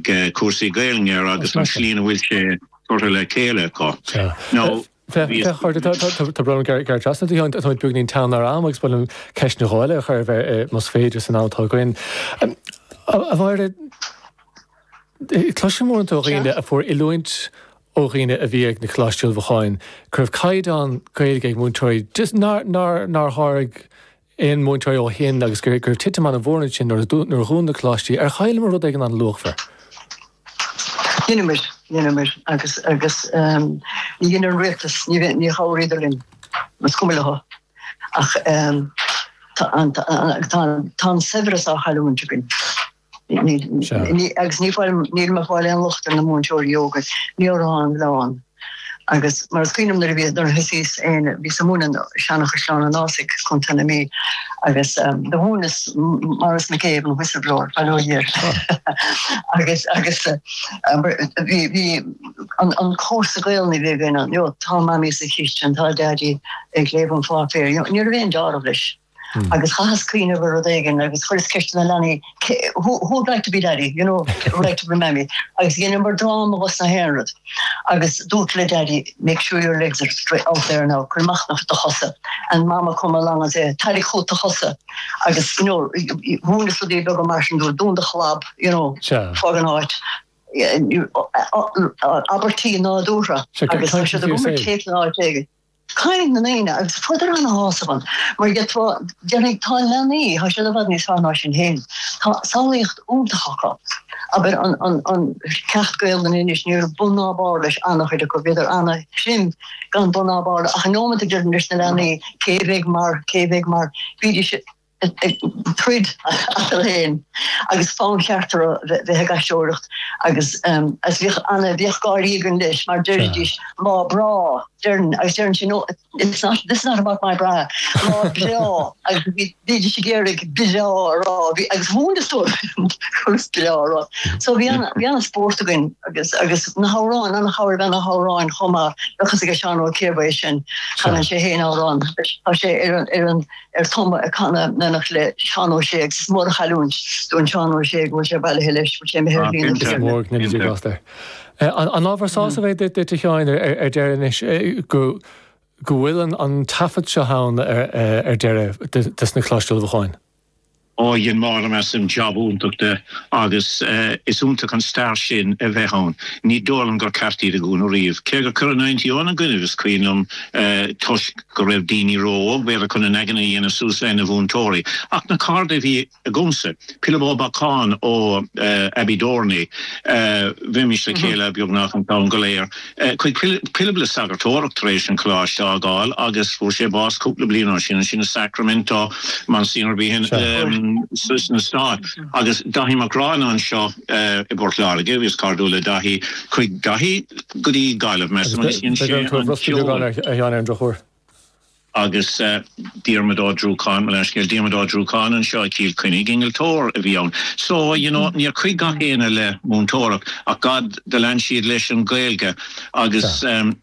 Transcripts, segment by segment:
cúrsaí Gaelainne air agus an tslí ina bhfuil sé curtha le chéile acu. Now, bhí. Tá brón orm gearradh trasna oraibh, táimid beagnainín teann ar am agus ba mhaith liom ceist nó dhó eile a chur oraibh más féidir san am atá againn. A Mháire, cloisim uaireanta ó dhaoine a fuair oiliúint ó dhaoine a bhí ag na Coláistí Ullmhúcháin go raibh caighdeán Gaeilge ag múinteoirí just nár nár nár tháirg aon mhúinteoir ó shin agus go raibh titim ana mhór ansin nuair a dhún na coláistí, ar chailleamar rud éigin ana luachmhar? Dheineamar, dheineamar agus agus ní dhein an rialtas, níor chabhraíodar linn, is cuma leo ach tá an saibhreas á chailliúint againn. Agus ní fáilim, nílim ag fáil aon locht ar na múinteoirí óga, ní orthu an milleán. Agus mar is cuimhin liom nuair a bhí, nuair a thosaíos féin, bhíos ag múineadh i Seanchaisleán an Fhásaigh Contae na Mí. Agus do mhúineas Maurice McCabe, an whistleblower, bail ó Dhia air. Agus, agus bhí, bhí an cúrsa Gaelainne a bhí againn, you know, tá Mamaí sa chistean, tá Daidí ag léamh an pháipéir, you know, ní raibh aon dealramh leis. agus chaitheas cuimhneamh ar rud éigin agus chuireas ceist ar na leanaí who would like to be daddy, you know, who would like to be mammy, agus dheineamar dráma dos na haon rud agus dúrt le daddy make sure your legs are straight out there now, cuir amach do chosa and mama come along and say tarraig chút do chosa agus you know, mhúineas rudaí beaga mar sin dóibh dún do chlab, you know, fág an áit abairtí nádúra agus an si go cé ná dé. Caint na ndaoine agus fuaireadar ana shásamh ann mar gheall tá, déarfainn, tá leanaí, tá siad i bhfad níos fearr ná sinn féin, tá samhlaíocht iontach acu. Abair an ceacht Gaolainne anois, ní raibh bun ná barr leis ana chuid acu, bhíodar ana chrim gan bun ná barr ach an nóimint a deirinn leis na leanaí cé bheidh mar, cé bheidh mar, bídís a. ag troid eatarthu féin agus fonn ceart orthu bheith ag aisteoireacht agus as bhíodh ana bhíodh gáirí againn leis mar deiridís Má Breá deireann agus deireann sí nó it's not this is not about my bra Má Breá agus bhí bhídís ag iarraidh breá a rá bhí agus mhúineas dóibh conas breá a rá so bhí ana bhí ana spórt againn agus agus na hamhráin ana chabhair a bheith na hamhráin chomh maith bheadh fhios age Seán Ó Ciardha é sin chanann sé féin amhrán tá sé ar an ar an ar an gcuma ag canadh in éineacht le Seán Ó Sé agus is mór an chailliúint dúinn Seán Ó Sé go bhfuil sé bailithe leis mar sé mo shéir mhín an Tiarna. An ábhar sásamh é duit, a Sheáin, ar deireadh anois, go bhfuil an taifead seo ann ar deireadh des na Coláistí Ullmhúcháin? Dhein Máire, measaim, jab iontach de agus is iontach an stair sin a bheith ann. Ní dóigh liom gur ceart iad a dhúnadh riamh. Cé gur cuireadh na innti ina gcoinnibh, is cuimhin liom, toisc go raibh daoine ró-óg, b'fhéidir, chun a n-aigne a dhéanamh suas lena mhúinteoirí. Ach na cairde a bhí agamsa, Pilib Ó Beacháin ó Abbeydorney, bheimis le chéile beagnach an t-am go léir, Chuaigh Pilib le sagartóireacht tar éis an choláiste a fhágáil agus fuair sé bás cúpla bliain ó shin, ansin i Sacramento, Monsignor Behan sna Stáit agus Daithí Mac Gráinne anseo i bPort Láirge, bhíos cairdiúil le Daithí, chuaigh Daithí go dtí Gaillimh, measaim, agus dhein sé an ceol. agus Diarmaid Ó Druacháin, mo leithscéal, Diarmaid Ó Druacháin anseo i Cill Chainnigh, innealtóir a bhí ann. So, you know, níor chuaigh gach éinne le múinteoireacht ach God, do lean siad leis an Ghaeilge agus ehm,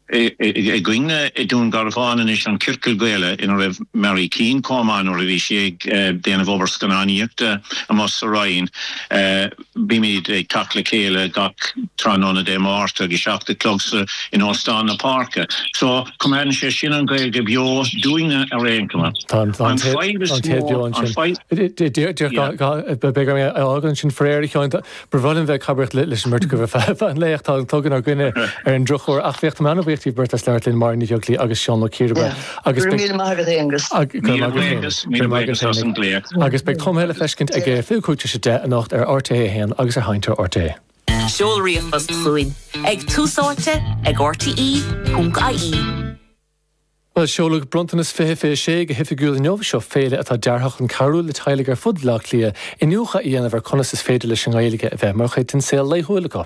againne i nDún Garbhán anois an Ciorcal Gaeilge ina raibh Máire againn chomh maith nuair a bhí sí ag déanamh obair scannánaíochta amuigh sa Rinn eh, Bímid ag teacht le chéile gach tráthnóna Dé Máirt ag a seacht a chlog sa in Óstán na Páirce. So, coimeádann sé sin an Ghaeilge beo dúinne ar aon chuma. Á coimeád beo, yeah. Féach, beidh orm é a fhágaint ansin faraor, a Sheáin, tá- ba bhreá liom bheith ag cabaireacht le- leis an mbeirt agaibh ar feadh feadh an lae ach tá an clog inár gcoinne ar an drochuair. Ach féach, tá mé an-bhuíoch díobh beirt as labhairt linn, Máire Ní Bheaglaoich agus Seán Ó Ciarghusa. Yeah. Agus beidh. Míle maith agat, Aonghus. Míle maith Aonghus. Míle maith agat as an glaoch. Agus beidh Tumtha le feiscint ag fiche cúig tar éis a 10 anocht ar RTÉ 1 agus ar Sheinnteoir RTÉ. Seol ríomhphost chugainn ag Tús Áite ag RTÉ.ie. Bhuel, seoladh Bronntanas 2026 go hoifigiúil inniu. Seo féile atá deartha chun cabhrú le teaghlaigh ar fud Bhaile Átha Cliath iniúchadh a dhéanamh ar conas is féidir leis an nGaeilge a bheith mar chuid den saol laethúil acu.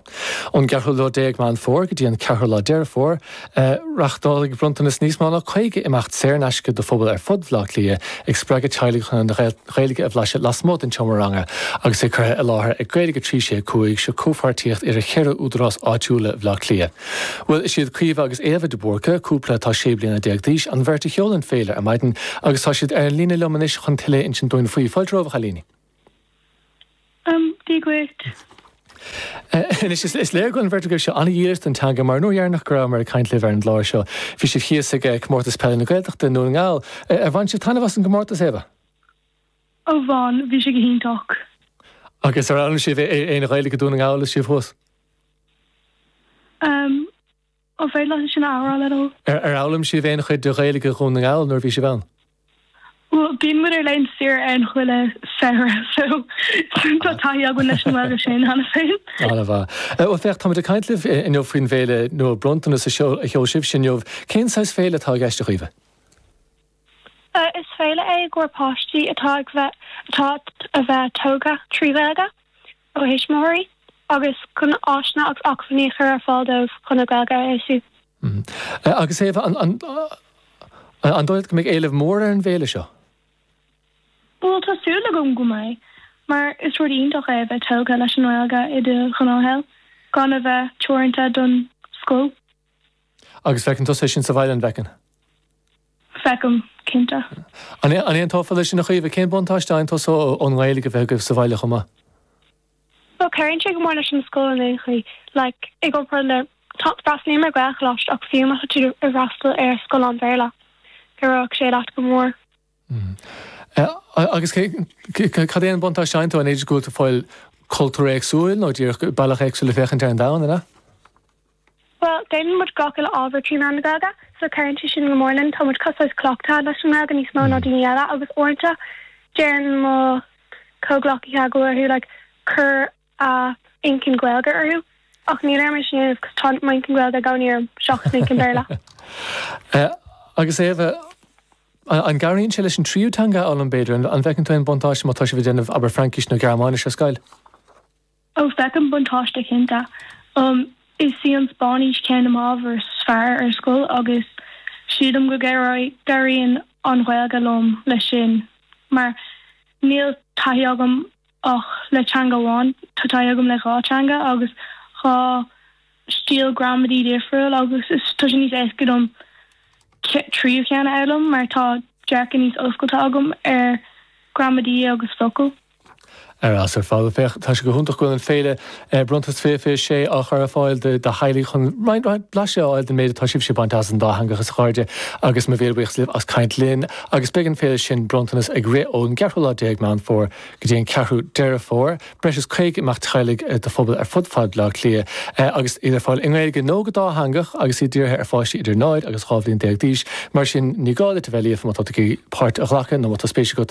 Ón gceathrú lá déag Meán Fómhair go dtí an ceathrú lá Deireadh Fómhair, Reachtálfaidh Bronntanas níos mó ná 50 imeacht saor in aisce do phobail ar fud Bhaile Átha Cliath, ag spreagadh teaghlaigh chun an Ghaeilge a bhlaiseadh lasmuigh den tseomra ranga agus é curtha i láthair ag Gaeilge 365, seo comhpháirtíocht idir cheithre údarás áitiúil i Bhaile Átha Cliath. Bhuel, is iad Caoimhe agus Éabha de Búrca, cúpla atá sé bliana déag d'aois, an bheirt a sheol an féile ar maidin agus tá siad ar an líne liom anois chun tuilleadh a insint dúinn faoi. Fáilte romhaibh, a chailíní! Go raibh maith agat. Anois, is léir go bhfuil an bheirt agaibhse an-dhílis don teanga mar an uair dheireanach go raibh mé ag caint libh ar an gclár seo. Bhí sibh thíos ag Comórtas Peile na Gaeltachta i nDún na nGall. Ar bhain sibh taitneamh as an gcomórtas, Éabha? Ó bhain, bhí sé go hiontach. Agus ar fhoghlaim sibh aon Ghaeilge i nDún na nGall is sibh thuas? Um. An féidir leat é sin a athrá, le do. Ar fhoghlaim sibh aon chuid de Ghaeilge Dhún na nGall nuair a bhí sibh ann? Bhuel, bíonn muid ar laethanta saoire ann chuile samhradh, so tá taithí againn leis an nGaeilge sin cheana féin. An-mhaith. Bhuel, féach, táimid ag caint libh inniu faoin bhféile nua Bronntanas a sheol sibhse inniu. Cén saghas féile atá i gceist, a Chaoimhe? Is féile é i gcomhair páistí atá ag bheith atá a bheith tógtha trí Ghaeilge óna thuismitheoirí agus chun áiseanna agus acmhainní a chur ar fáil dóibh chun a nGaeilge a fheabhsú. Agus Éabha, an an dóigh leat go mbeidh éileamh mór ar an bhféile seo? Bhuel, tá súil agam go mbeidh, mar is rud iontach é a bheith tógtha leis an nGaeilge i do ghnáthshaol, gan a bheith teoranta don scoil. Agus feiceann tusa é sin sa bhaile, an bhfeiceann? Feicim, cinnte. An aontófá leis sin a Chaoimhe? Cén buntáiste a fhaigheann tusa ón nGaeilge a bheith agaibh sa bhaile chomh maith? Bhuel, cabhraíonn sé go mór leis an scoil in aon chaoi. Like, i gcomparáid le, freastalaím ar Ghaelcholáiste ach fiú má tá tú ag freastal ar scoil an Bhéarla, cabhróidh sé leat go mór. Agus cad é an buntáiste a fhaigheann tú? An féidir go bhfuil tú ag fáil cultúr éagsúil nó díreach bealach éagsúil le féachaint ar an domhan, an ea? Bhuel, déanann muid gach uile ábhar trí mheán na Gaeilge, so cabhraíonn sé sin go mór linn. Tá muid cosúil le cleachtaithe leis an nGaeilge níos mó ná daoine eile agus uaireanta deireann mo chomhghleacaithe go bhfuil orthu like cur a n-inchinn Gaeilge orthu ach níl orm é sin a dhéanamh cause tá m'inchinn Gaeilge i gcónaí orm seachas m'inchinn Béarla. Agus Éabha, an gcabhraíonn sé leis an tríú teanga a fhoghlaim b'fhéidir? An bhfeiceann tú aon bhuntáiste má tá sibh ag déanamh, abair, Fraincis nó Gearmáinis ar scoil? Ó, feicim buntáiste cinnte. Is í an Spáinnis ceann de m'ábhair is fearr ar scoil agus sílim go gcabhraíonn an Ghaeilge liom leis sin mar níl taithí agam ach le teanga amháin, tá taithí agam le dhá teanga agus dhá stíl ghramadaí difriúil agus tá sé níos éasca dom tríú ceann a fhoghlaim mar tá dearcadh níos oscailte agam ar ghramadaí agus focail. Ar fheabhas ar fad, féach, tá sé go hiontach go bhfuil an Féile Bronntanas 26 á chur ar fáil do theaghlaigh chun roinnt blaiseadh a fháil den méid atá sibhse ag baint as an dátheangachas, a chairde, agus mo mhíle buíochas libh as caint linn. Agus beidh an Féile sin, Bronntanas, ag rith ón gceathrú lá déag Meán Fómhair go dtí an ceathrú Deireadh Fómhair. Breis is caoga imeacht teaghlaigh do phobail ar fud fad Bhaile Átha Cliath, agus iad ar fáil i nGaeilge nó go dátheangach, agus iad dírithe ar pháistí idir 0 agus 12 bhliain d'aois. Mar sin, ní gá duit a bheith líofa má tá tú ag iarraidh páirt a ghlacadh nó má tá spéis agat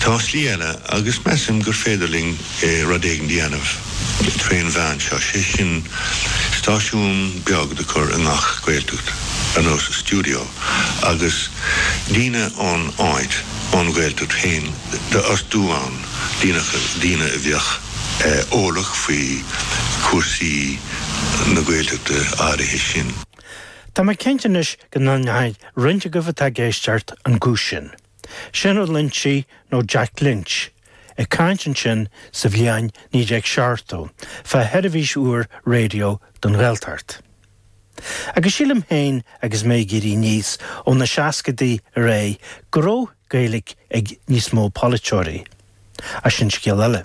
Tá slí eile, agus measaim gur féidir linn rud éigin a dhéanamh trén mheán seo, sé sin stáisiún beag do cur i ngach Gaeltacht, ar nós stiúideo, agus daoine ón áit, ón Ghaeltacht féin, d'fhostú ann, daoine a bheadh eolach faoi chúrsaí na Gaeltachta áirithe sin. Tá mé cinnte anois go n-aithneoidh roinnt agaibh atá ag éisteacht an guth sin. Sin Ó Loingsigh nó Jack Lynch, ag caint ansin sa bhliain 1970 fá choinne seirbhís úr raidió don Ghaeltacht. Agus sílim féin agus mé ag éirí aníos ó na seascaidí ar aghaidh go raibh Gaeilg ag níos mó polaiteoirí. Ach sin scéal eile.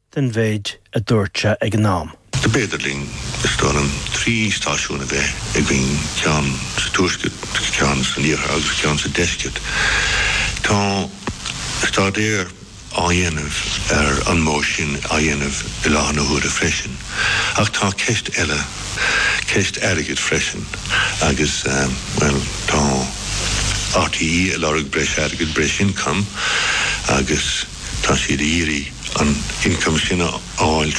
den mhéid a dúirt sé ag an am. B'fhéidir linn, is dóigh liom, trí stáisiún a bheith againn, ceann sa tuaisceart, ceann san iarthar agus ceann sa deisceart. Tá staidéar á dhéanamh ar an modh sin a dhéanamh i láthair na huaire freisin. Ach tá ceist eile. ceist airgid freisin agus, bhuel, tá RTÉ ag lorg breis airgid, breis ioncam agus tá siad ag iarraidh an t-ioncam sin a fháil.